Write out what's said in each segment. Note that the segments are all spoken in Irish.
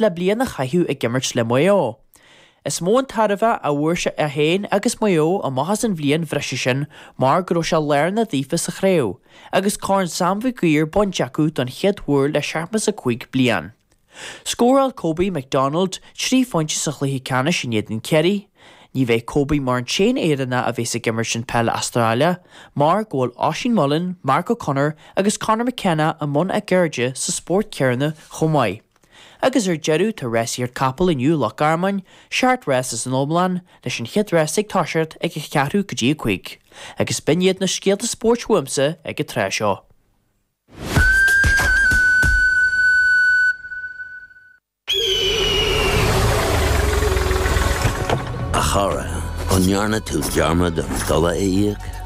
le bliain a chaitheamh ag imirt le Maigh Eo. Is mó an tairbhe a fuair sé féin agus Maigh Eo amach as an bhliain bhreise sin mar go raibh sé lárnach daofa sa chraobh agus Corn Sam Mhig Uidhir bainte acu don chéad uair le seachtó is a cúig bliain. Scóráil Kobe McDonald trí phointe sa chluiche ceannais in éadan Chiarraí. Ní bheidh Kobe mar an t-aon Éireannach a bheas ag imirt an peil Astráile mar go bhfuil Oisín Mullin, Mark O'Connor agus Conor McKenna i mbun a gceirde sa spórt céanna chomh maith. Agus ar deireadh tá rásaíocht capall inniu i Loch Garman, seacht rás ins an iomlán, leis an chéad rás ag toiseacht ag a cheathrú go dtí a cúig. Agus b'in iad na scéalta spóirt uaimsa ag an tráth seo. A chara, an ndearna tú dearmad an dola a íoc?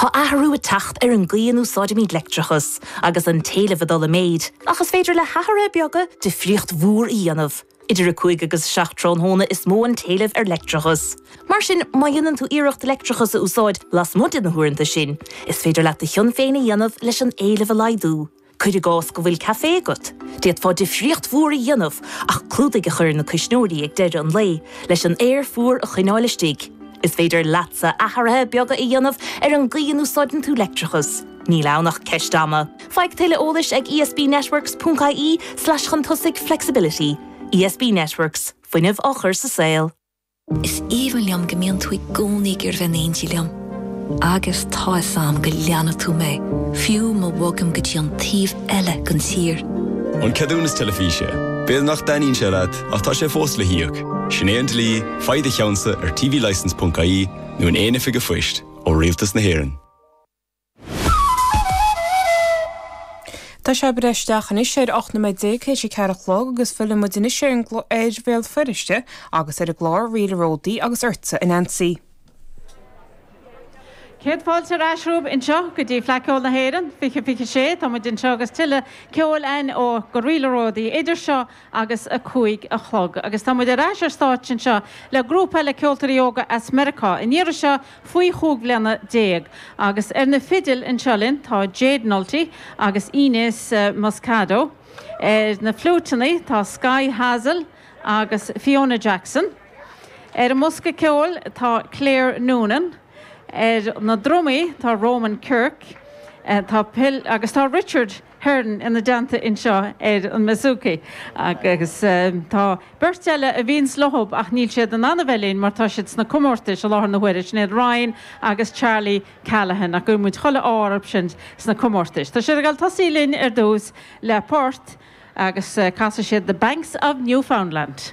Tá athrú ag teacht ar an gcaoi a n-úsáidimid leictreachas agus an t-éileamh ag dul i méid, ach is féidir le hathruithe beaga difríocht mhór a dhéanamh. Idir 5 agus 7 tráthnóna is mó an t-éileamh ar leictreachas. Mar sin, má dhéanann tú iarracht leictreachas a úsáid lasmuigh de na huaireanta sin, is féidir leat do chion féin a dhéanamh leis an éileamh a laghdú. Cuir i gcás go bhfuil caifé agat. D'fhéadfá difríocht mhór a dhéanamh ach clúdaigh a chur ar na cuisneoirí ag deireadh an lae leis an aer fuar a choinneáil istigh. Is féidir leatsa athruithe beaga a dhéanamh ar an gcaoi a n-úsáideann tú leictreachas. Níl ann ach ceist ama. Faigh tuilleadh eolais ag esbnetworks.ie/chun tosaigh flexibility. ESB Networks, fuinneamh á chur sa saol. Is aoibhinn liom go mbíonn tú i gcónaí ag iarraidh bheith in éindí liom. Agus tá fhios a'm go leanfaidh tú mé, fiú má bhogaim go dtí an taobh eile den tír. An ceadúnas teilifíse. B'fhéidir nach dtaitníonn sé leat, ach tá sé fós le híoc. Sin é an dlí, faigh do cheannsa ar tvlicence.ie nó in aon oifig a' phoist, ó Rialtas na hÉireann. Tá sé ag breith isteach anois ar 18 nóiméad tar éis a ceathair a chlog agus filleann muid anois ar Bhéal Feirste agus ar an gclár Ríl a Ródaí agus ortsa a Neansaí. Céad fáilte ar ais romhaibh anseo go dtí Fleadh Ceoil na hÉireann 2026. Tá muid anseo agus tuilleadh ceoil ann ó Go Ríl a Ródaí idir seo agus a cúig a chlog agus tá muid ar ais ar stáitse anseo le grúpa eile ceoltóirí óga as Meiriceá, an iarraidh seo faoi chúig bhliana déag. Agus ar na fidil anseo linn tá Jade Nulty agus Inez Moscado, ar na fliúiteanna tá Sky Hazel agus Fiona Jackson, ar an mbosca ceoil tá Claire Noonan, ar na drumaí tá Roman Kirk, tá Phil agus tá Richard. Hearn ina dteannta anseo ar an mBasooka agus tá beirt eile a bhíonns leo ach níl siad in ann a bheith linn mar tá siad sna comórtais i láthair na huaire, sin iad Ryan agus Charlie Callaghan ach guíonn muid chuile ádh orthusan sna comórtais. Tá siad ag dul ag tosú linn ar dtús le port agus casfaidh siad The Banks of Newfoundland.